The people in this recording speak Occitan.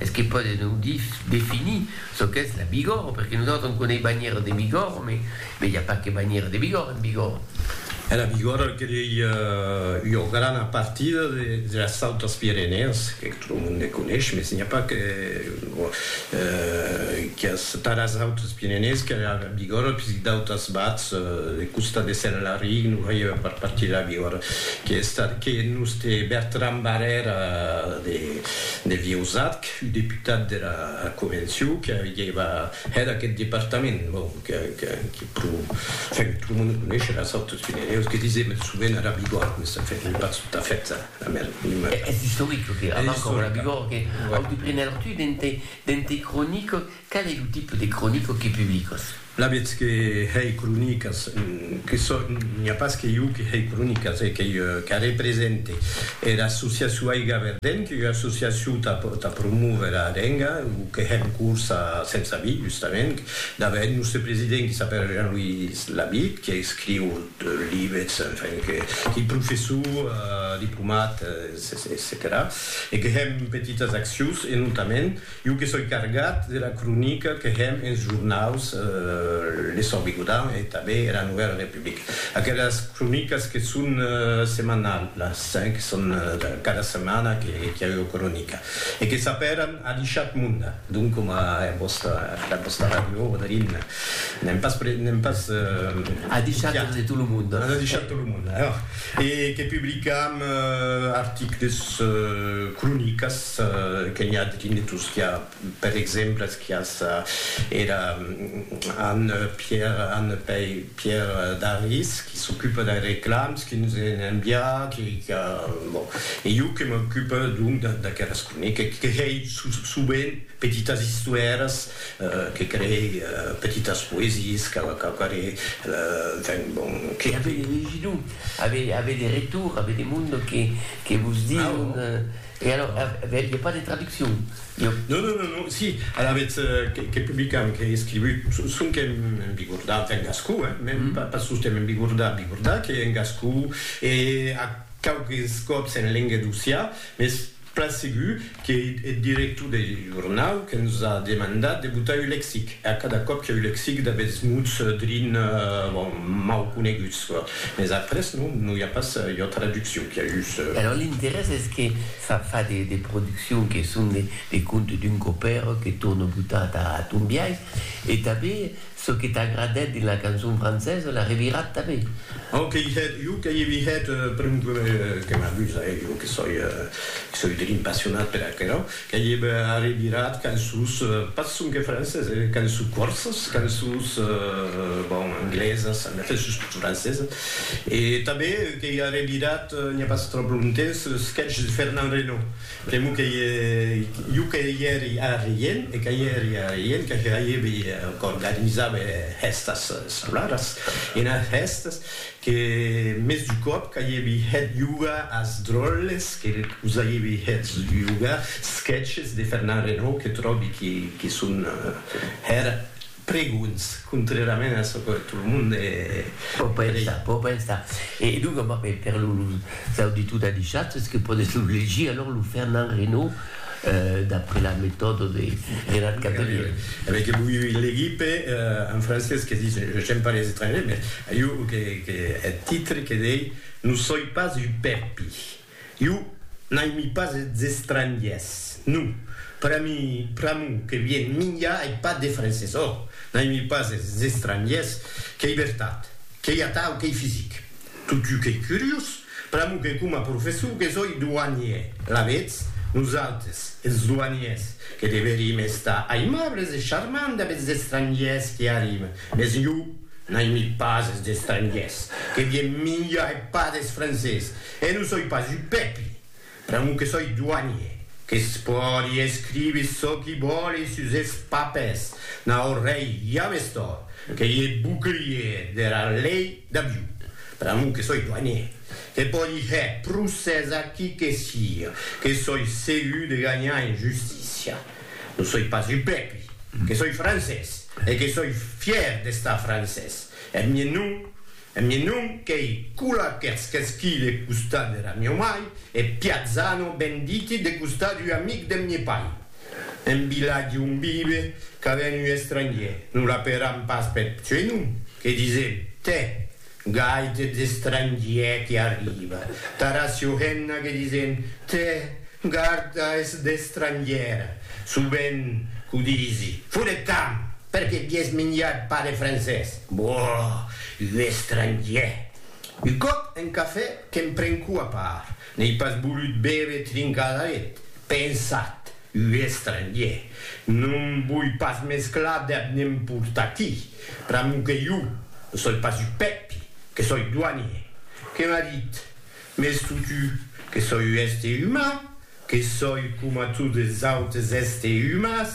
Es que pòde non definir çò qu'es la Bigòrre, perque nosautres en conei banhères de Bigòrre, me i a pas que banhères de Bigòrre en Bigòrre. E la Bigòrre el que ei ua grana partida de las Autas Pirenèas, que tot lo monde coneis, mes n'i a pas que qu'es tà las Autas Pirenèas que la Bigòrre, puisque d'autas bats de costat de Sent-Laric non faievan pas partir de la Bigòrre, que es tà que nos té Bertran Barrèra de. Devieu Zatc, ua deputat dera Convencion que aguieva hèt aqueth departament, bon, que pro, enfin, tot lo monde coneisherà es Autos Pineneus, que disem eth sovent ara Bigòrd, mès enfin, non pas tot a fait era mesma. Es istoric, lo que era abans coma era Bigòrd, que Auto Pirenèus, tu, dente Cronique, Qual es lo tipe de cronica que publicas? La vètz que hèi cronicas, que sò, n'i a pas que jo que hèi cronicas, e qu'ei qu'a represente era associacion Aiga Verdent, qu'ei ua associacion tà tà promóver a lenga, lo que hè en corsa a Sensavit, justament, dava eth nòste president qui s'apèra Jean-Louis Labitte, qui escriu deux lives, enfin, que qu'ei professor, diplomat, etcetèra, e que hèm petitas accions, e notament, Jo que soi cargat de la cronica que hèm enes jornaus Le Sòrt Bigodan e tanben era Novèla Republica. Aquelas cronicas que son semanalhas, que son cada setmana que i a ua cronica e que s'apèran Adishat Munda, donc coma era vòsta, era vòsta ràdio Oderin. N'èm pas, n'èm pas copiat. Adishat de tot lo monde. Adishat de tot lo monde, e que publicam articles, cronicas. que n'i a de dinetos qu'a per exemples quias era Anne Pierre Anne Pei Pierre Daris qui s'ocupe dei reclams qui nos en envia qui qu'a bon e jo que m'ocupe donc d'aqueras croniques que hei sovent petitas istoères que crei petitas poesies qu'a quauquarre enfin bon que avei legido avei avei de retour avei de monde que que vos diu E alors, vel i a pas de traduccion? Iò. Non, non, non, non, si, alavetz que publicam, qu'è escrivut, sonque en bigordà, enfin en gascon, hein, mèn pas sosten en bigordà, bigordà, qu'è en gascon e a quauques còps en lenga d'Ossià, mès plan segur qu'ei eth director deth jornau que nos a demandat de botar un lexic, e a cada còp que'u lexic d'aguests mots drin, bon, mau coneguts. Mes après non, non i a pas ua traduccion, qu'i a jus. E alors l'interès es que fa fa de de produccions que son de de contes d'un copèr que torne botar ta ton biais e tanben çò que t'agradèt dins la cançon francesa la revirat tanben. Au que i hèt, jo que i vi hèt, per exemple, que m'amusa, eh, jo que soi, que soi drin passionat per aquerò, Qu'ei eb arribirat qu'en sus, pas sonque francés, eh, qu'en sus corses, qu'en sus, bon, anglesas, en efèth sus tot francesas. E tanben qu'ei arribirat, n'i a pas tròp longtemps, eth sketch de Fernand Reynaud, pr'amor qu'ei jo que i èri a Rient, e que i èri a Rient, que hèibi, qu'organizava es hèstas escolaras, enas hèstas, Que mès du còp qu'aièvi hèt yoga as dròlles que vos aièvi hèt yoga, sketches de Fernand Reynaud que tròbi que son hèr pregonhs, contrèrament a çò que tot lo monde pò pensar, pò pensar. E donc, per los auditors d'Adishat, es que pòdes lo legir, alors, lo Fernand Reynaud. d'après la metòda de Gérard Cabrel. Avè que voi legir pe un francés que ditz je j'aime pas les étrangers, mès iu que que eth titre que dei non soi pas un pèpi. Iu n'aimi pas es estrangiers, non. Per a mi, pr'amor que vien minha ei pas de francés. Ò, n'aimi pas es estrangiers, qu'ei vertat, qu'ei atau, qu'ei fisic. Totjou qu'ei curiós, pr'amor que coma professor que soi douanier, alavetz, nosautres, es douaniers, que deverim estar aimables e charmants dab es estrangiers qui arriben, mes jo n'aimi pas es estrangiers, que vien minjar e pas des francés, e non soi pas un pèpi! Pr'amor que soi doanier, que's pòdi escrivi çò qui vòli sus es papers, n'a ò rei james tòrt, qu'ei e bouclier dera lei d'aviu. Pr'amor que soi doanier, que pòdi hèr procès a qui que sia, que soi segur de ganhar en justícia. Non soi pas un pèpi, que soi francés, e que soi fièr d'estar francés. Eth mien nom E mi non qu'ei cula qu'ersquesqui de costat dera mieu mai, e Piazzano ben diti de costat ua amic deth mie pai. En vilatge on vive ca ven ua estrangier, non la peram pas peth suei nom, que disem, tè, gaite d'estrangier que arriba, tara Siohenna que disem, tè, garda es d'estrangiera, sovent, qu'o disi, foret camp, perque vies minjat pas de francés. Boh! Un estrangièr! Un còp un cafè qu'èm prencu a part, n'èi pas volut bève trincar d'aret. Pensat, un estrangièr! Non voi pas mesclar deb ne'n portar-ti, pr'amor que jo ne soi pas un pèpi, que soi doanier. Que m'a dit, Mès totu, que soi un èster uman, que soi coma totes es autes èster umans,